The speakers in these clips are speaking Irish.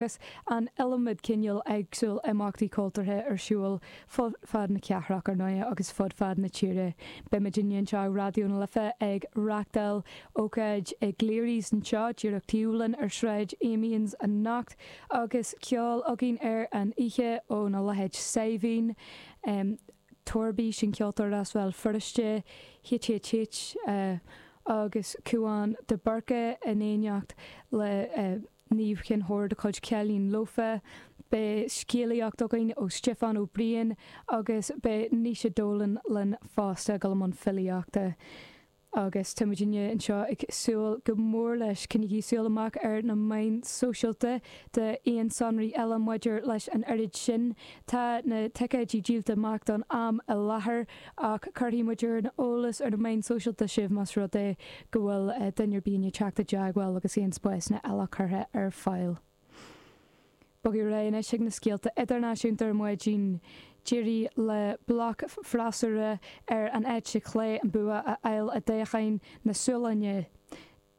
Agus an iliomad cineál eagsúil imeachtaí cultúrtha ar siúl fud fad na cathrach, ar ndóighe, agus fud fad na tíre. Beimidne anseo i Raidió na Life ag reachtáil ócáid i gCleary's anseo díreach taobh linn ar Shráid Amiens anocht agus ceol againn ar an oíche óna leithéid Saidhbhín Toirbí, sin ceoltóir as Béal Feirste, HHH agus Cúán de Búrca in éineacht léi. Niamh Keane-Hoare de chuid Cailín Lofa. Beidh scéalaíocht againn ó Stiofán Ó Briain agus beidh Naoise Dolan linn fosta i mbun filíochta. Agus táimidne anseo ag súil go mór leis. Coinnigí súil amach ar na meáin sóisialta d'aon sonraí eile maidir leis an ócáid sin. Tá na ticéidí díolta amach don am i láthair. Ach cuirfidh muid ar an eolas ar na meáin sóisialta sibh más rud é go bhfuil duine ar bith ag teacht i dteagmháil agus aon spásanna eile curtha ar fáil. Bogfaidh ar aghaidh anois chuig na scéalta idirnáisiúnta ar maidin. D'éirigh le bloc freasúra ar an eite chlé an bua a fháil i dtoghchán na Sualainne.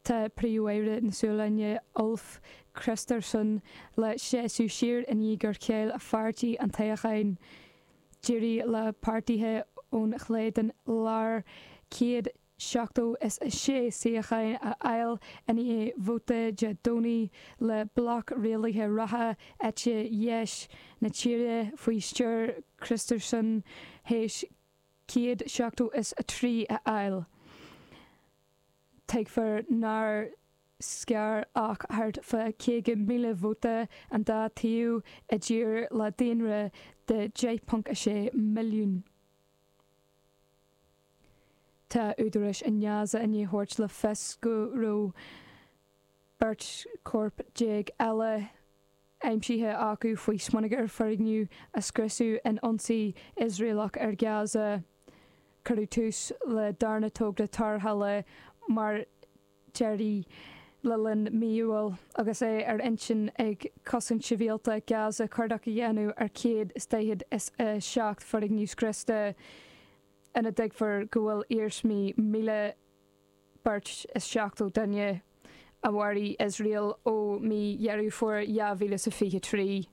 Tá Príomhaire na Sualainne, Ulf Kristersson, le seasamh siar i ndiaidh gur chaill a pháirtí an toghchán. D'éirigh le páirtithe ón chlé den lár céad seachtó is a sé suíochán a fháil i ndiaidh vóta Dé Domhnaigh le bloc rialaithe reatha eite dheis na tíre faoi stiúir Kristersson thíos céad seachtó is a trí a fháil. Tuigtear nár scar ach thart fá 50,000 vóta an dá taobh i dtír le daonra de 10.6 milliún. Tá údaráis i nGaza i ndiaidh a thabhairt le fios go raibh Beirt chorp déag eile aimsithe acu faoi smionagar foirgnimh a scriosadh in ionsaí Iosraelach ar Gaza. Cuireadh tús leis an darna togra tarrthála mór deireadh le linn mí Iúil agus é ar intinn ag Cosaint Shibhialta Gaza cuardach a dhéanamh ar 147 foirgneamh scriosta ina dtuigtear go bhfuil iarsmaí míle beirt is seachtó duine a mharaigh Iosrael ó mí Dheireadh Fómhair 2023.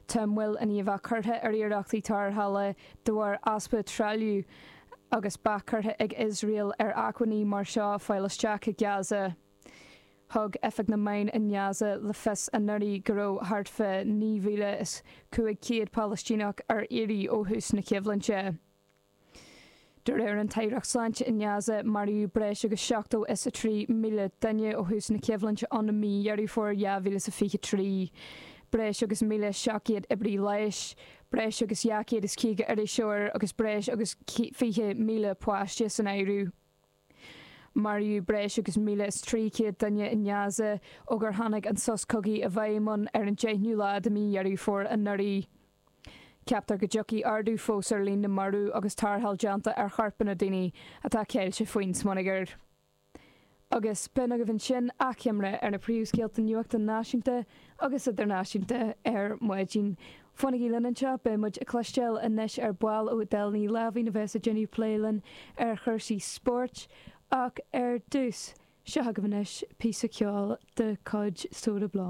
Tá moill an-mhór curtha ar iarrachtaí tarrthála de bharr easpa trealaimh agus bac curtha ag Iosrael ar acmhainní mar seo a fháil isteach i Gaza. Thug Oifig na Meán i nGaza le fios anuraidh go raibh thart fá 9,500 Palaistíneach ar iarraidh ó thús na coimhlinte. De réir an Aireacht Sláinte i nGaza, maraíodh breis agus seachtó is a trí míle duine ó thús na coimhlinte ann i mí Dheireadh Fómhair 2023. Breis agus míle seacht gcéad oibrí leighis, breis agus dhá chéad is caoga iriseoir agus breis agus fiche míle páiste san áireamh. Maraíodh breis agus míle is a trí chéad duine i nGaza ó gur tháinig an sos cogaidh i bhfeidhm ann ar an deichniú lá de mí Dheireadh Fómhair anuraidh. Ceaptar go dtiocfaidh ardú fós ar líon na marbh agus tarrtháil á déanamh ar choirpeanna daoine atá ceilte faoin smionagar. Agus b'in agaibh ansin achoimre ar na príomhscéalta nuachta náisiúnta agus idirnáisiúnta ar maidin. Fanaigí linn anseo, beidh muid ag cloisteáil anois ar ball ó Edel Ní Láimhín a bheas ag déanamh plé linn ar chúrsaí spóirt ach ar dtús, seo agaibh anois píosa ceoil de chuid Soda Bl.